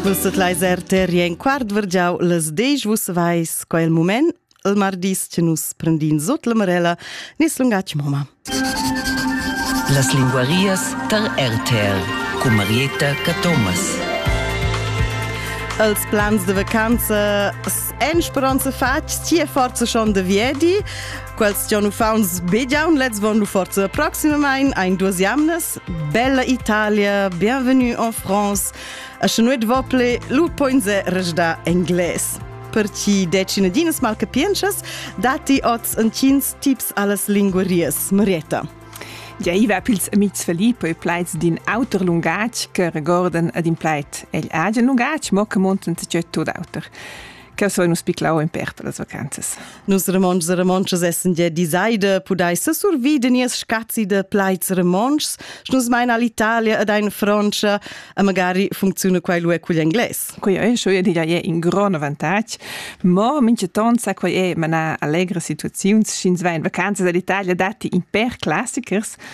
Vus set leiser terri en quart vergiau les dej vus vais quel moment il mardis che nus prendin sut la marella nis lungatg moma. Las linguarias tar RTL cu Marietta Cathomas. Els plans de vacanza en speranza fatg sia forza schon de viedi Quels gian uffauns begiaun lez von lu forza proximamain ein duas jamnas. Bella Italia, bienvenue en France. A Chenoit Vople, lu poinze rejda engles. Per chi decine dinas mal capienchas, dati oz en tins tips allas linguarias, Marietta. Ja iva pils amics Filippo e plaids d'in auter lungatg che regorden ad in plaid egl agen lungatg, mo che monten tgeu tot auter. che so nus piclau in per per las vacanzas. Nus remonts e remontas essen de disaide pudeisse survi de nies scazzi de plaids remonts, nus meina all'Italia ed ein Francia e magari funziona quai lu cugl engles. Quei è schon ja è in gran avantatg, ma mincheton sa quei è mana allegra situaziuns sch'ins va in vacanza dall'Italia datti in per classichers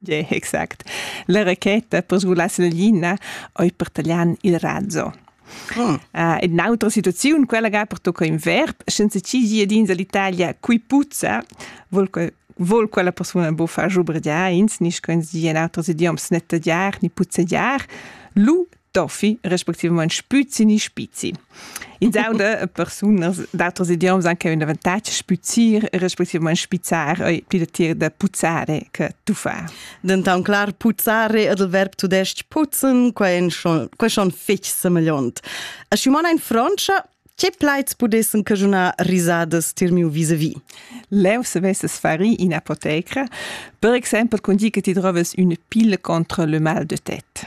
Yeah, exact. La racheta per sgulass la lina oi per taglian il razzo. Mm. Uh, ed un'altra situazione, quella che pertocca in verb, senza chi giadins all'Italia qui puzza, vuol, vuol quella persona buffar giubrediar, ins, nicht können sie in altros idioms nicht tagliar, ni puzzeggiar, lu Toffi respectivament spüzi ni spizi. Ins auda persunas d'auters idioms anche un avantatg spüzir e respectivament spizzar ei pli datier da puzzare che tuffar. Denton clar puzzare ed il verb tudesc putzen quai schon fich semegliont. A Simona in Francia Che plaids pudessen cagiunar risadas tir miu vis-a-vis? Leu se vesses fari in apoteca, per exempel con di che ti troves une pille contre le mal de tête.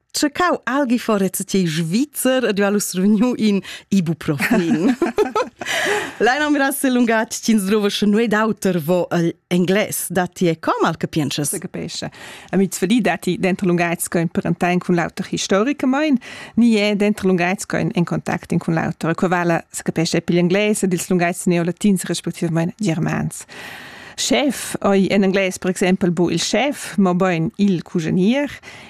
cercau algi forez ti svizzer ed io survegnu in ibuprofin. Leina mira se lungatg tin drova sche noi d'auter vo el engles datti e com al capiences. Se capesce. A mit svedi datti dentro lungatg che in parentain cun l'auter historica mein, ni è dentro lungatg che in contact cun l'auter. Qua vala se capesce pigl engles ed ils lungatgs neolatins respectivament germans. Chef, oi en engles per exempel bu il chef, mo boin il cugenier,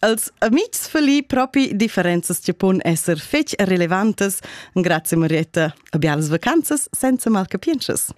als amics feli propi differenzas che pon esser fetg relevantes. Grazie Marietta, a bialas vacanzas senza mal capienschas.